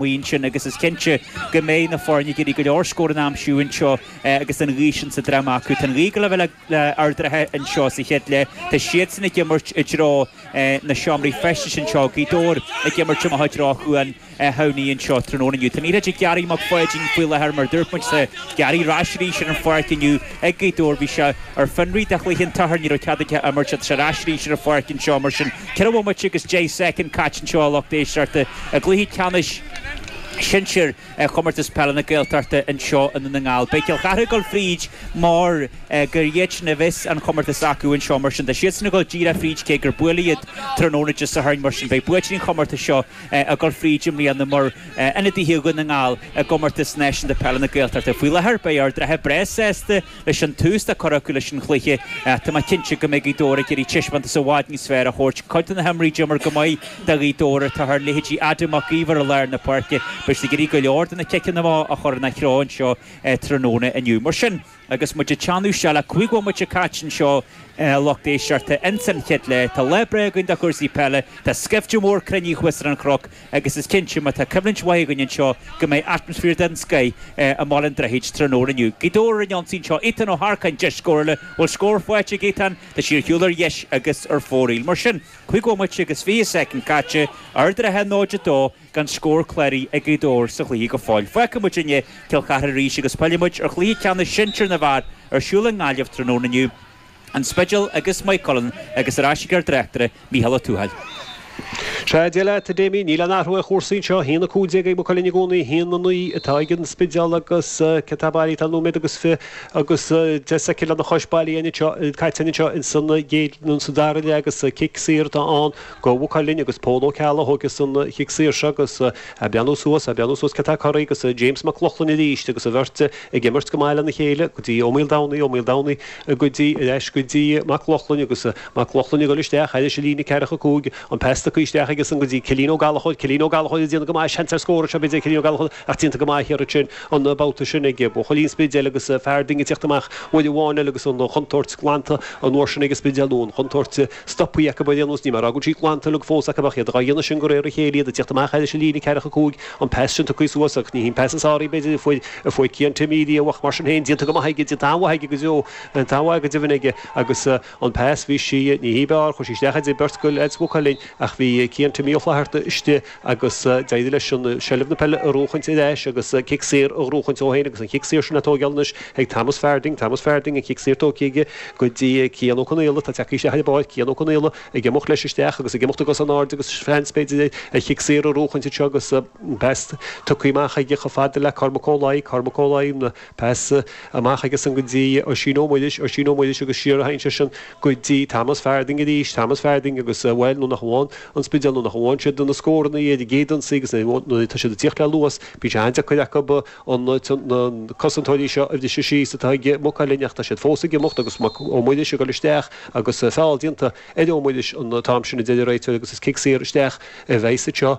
mar sin agus is cinnte go mbeidh na foirne ag iarraidh go leor scór a aimsiú anseo agus an ghaoth sin sa droim acu. Tá an ghaoth ag dul a bheith le hArd an Rátha anseo sa chéad leath. Tá siadsan ag imirt i dtreo na seomraí feistis anseo, Gaoth Dobhair ag imirt amach i dtreo Chuan Thamhnaigh anseo tráthnóna inniu. Tá an liathróid ag Gary Mac Pháidín faoi láthair mar dúirt muid, tá Gary ar ais arís ar an pháirc inniu. Ag Gaoth Dobhair bhí sé ar fionraí do chluiche an tSathairn, ní raibh cead aige a imirt agus ar ais arís ar an pháirc anseo mar sin. Ceithre bhomaite agus deich soicind caite anseo a lucht éisteachta i gcluiche ceannais sinsir Chomórtas Peile na Gaeltachta anseo i nDún na nGall. Beidh Cill Charthaigh ag dul fríd mar gur iadsan a bheas an chomórtas acu anseo mar sin tá siadsan ag dul díreach fríd cé gur buaileadh iad tráthnóna Dé Sathairn mar sin beidh buaiteoirí an chomórtais seo ag dul fríd i mbliana mar Ionadaithe Dhún na nGall i gComórtas Náisiúnta Peile na Gaeltachta faoi láthair. Beidh Ard an Rátha breá sásta leis an tús atá curtha acu leis an chluiche ach tá mé cinnte go mbeidh Gaoth Dobhair ag iarraidh taispeántas i bhfad níos fearr a thabhairt. Cuid de na himreoirí d'imir go maith do Ghaoth Dobhair ar an tSatharn leithéidí Adam Mac Íomhair i lár na páirce. Beidh siad ag iarraidh go leor de na ciceanna amach a chur ina threo anseo tráthnóna inniu. Mar sin. Agus muid ag teannadh isteach le cúig bhomaite caite anseo a lucht éisteachta insan chéad leath, tá lá breá againn do chúrsaí peile, tá scaifte mór cruinnithe thuas ar an chnoc agus is cinnte, má tá coimhlint mhaith againn anseo, go mbeidh atmaisféar den scoith i mBaile an Droichid tráthnóna inniu. Gaoth Dobhair ar an ionsaí anseo, Ethan Ó hEarcáin, deis scórála, bhfuil scór faighte ag Ethan? Tá sí ar shiúl ar dheis agus ar fóraoil. Mar sin, cúig bhomaite agus fiche soicind caite, Ard an Rátha 0-2, gan scór cláraithe ag Gaoth Dobhair sa chluiche go fóill. Fágfaidh muid inniu Cill Chartha arís agus pillfidh muid ar chluiche ceannais sinsir na bhfear ar siúl i nGaillimh tráthnóna inniu, An Spidéal agus Maigh Cuilinn agus ar ais ag ár dtráchtaire, Mícheál Ó Tuathail. Sea, Dia leat, a Damien. Níl aon athrú ar chúrsaí anseo. a haon a cúig déag ag Maigh Cuilinn i gcónaí, a haon a naoi atá ag an Spidéal agus céard atá bailithe? Tá nóiméad agus fiche agus deich soicind lena chois bailithe nó caite anseo insan gcéad, nó insa dara leath agus cic saor atá ann. do Mhaigh Cuilinn agus Pól Ó Ceallaigh a thóigeas an cic saor seo agus ag breathnú suas, ag breathnú suas cé tá ag corraí agus James Mac Lochlainn arís agus a bheirt ag imirt go maith lena chéile go dtí Ó Maoldomhnaigh, Ó Maoldomhnaigh go dtí, ar ais go dtí Mac Lochlainn agus Mac Lochlainn ag goil isteach, thairis an líne ceathracha cúig, an pas tugtha isteach aigesean go dtí Cillín Ó Gallchóir, Cillín Ó Gallchóir ag déanamh go maith, seans ar scór anseo b'fhéidir ag Cillín Ó Gallchóir ach déanta go maith iarracht sin an babhta sin ag buachaillí an Spidéil agus fear Ding ag tíocht amach uair amháin eile agus an chontúirt glanta an uair sin ag an Spidéal nó an chontúirt stoptha acu b'fhéidir, agus ní móide go bhfuil sí glanta uilig fós acu, ach iad dhá dhéanamh sin de réir a chéile, iad ag tíocht amach thairis an líne ceathracha cúig, an pas sin tugtha suas, agus ní hí an pas is fearr, b'fhéidir, a fuair Cian Tim Ealey, ach mar sin féin, déanta go maith aige, déanta an-mhaith aige go deo, déanta an-mhaith go deimhin aige, agus an pas, bhí sí, ní hí a b'fhearr, chuaigh sí isteach idir beirt de leaids Mhaigh Cuilinn, ach bhí Cian Tim Ó Flatharta istigh. agus d'éirigh leis an seilbh na peile a ghnóchaint ar ais agus cic saor a ghnóchaint dó féin agus an chic saor sin á tóigeáil anois ag Thomas Farthing, Thomas Farthing, an chic saor tógtha aige go dtí Cian Ó Conaola, atá tagtha isteach ar an bpáirc, Cian Ó Conaola ag imeacht leis isteach agus ag imeacht i gcos in airde agus seans b'fhéidir ar chic saor a ghnóchaint anseo agus pas tugtha amach aige chomh fada le Cormac Ó Laoi, Cormac Ó Laoi. Pas amach aigesean go dtí Oisín Ó Muiris, Oisín Ó Muiris agus siar a théann sé sin go dtí Thomas Farthing arís, Thomas Farthing agus, bhuel, nuair nach bhfaigheann an Spidéal nuair nach bhfaigheann siad na scóranna ar an gcéad ionsaí agus nuair a, tá siad ag tíocht le luas, bíonn sé an-deacair acu an, na cosantóirí seo a bhriseadh síos atá ag Maigh Cuilinn ach tá siad fós ag imeacht agus Mac, Ó Muiris ag dul isteach agus feall déanta ar Ó Muiris an t-am sin a deir an réiteoir agus is cic saor isteach a bheas anseo.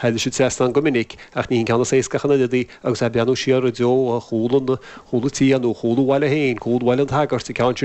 Thaitin siad trasnán go minic, ach ní haon ceann is éasca a chanadh iad í, agus a' breathnú siar i dtreo chúl an chúl a' tí, nó chúl an bhaile féin, cúl Bhaile an tSagairt, i gceann sin.